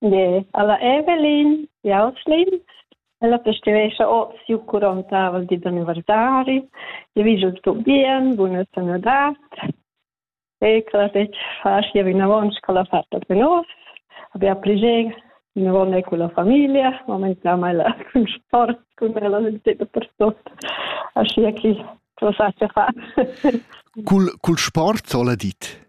De, alla Evelyn, Jauslin, ella festivescha oz siu curontavel di d'anniversari, e vi giu sto bien, buna sanadad, e claretg faschia vinavon sco la fatta per nos, abia pligen vinavon e con la familia, momentamai la con sport, con ella da per tot, aschia che cosa sa fa. cul, cul sport, sola dit?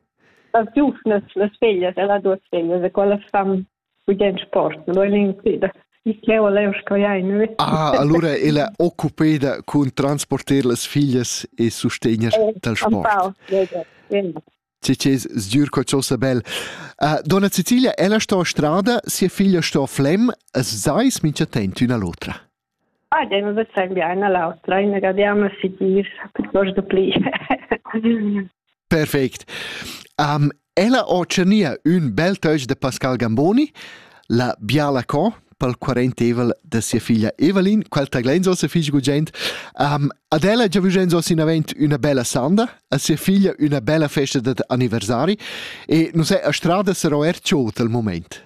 las giuvnas, las feglias e las duas feglias, e quelle fan gudens port, non voglio incidere. Ich leo leo scoiain. Ah, allora ella occupeda cun transporter las figlias e sostegner eh, dal sport. Ci c'è sgiur co ciò sabel. Uh, donna Cecilia, ella sto a strada, sia figlia sto a Flem, e seis mincha tent üna l'otra. Ah, dei, me vezein bien all'autra, inagadiamo si dir, piuttosto pli. Perfect. Um, ella ho tschenia ün bel töch de Pascal Gamboni, la biala co, pel quarentevel de sia figlia Evelyn, quel taglenzo se figl gugent. Um, ad ella già vugenzo sinavent una bella sanda, a sia figlia una bella festa de anniversari e non sei a strada sarò er tschot al moment.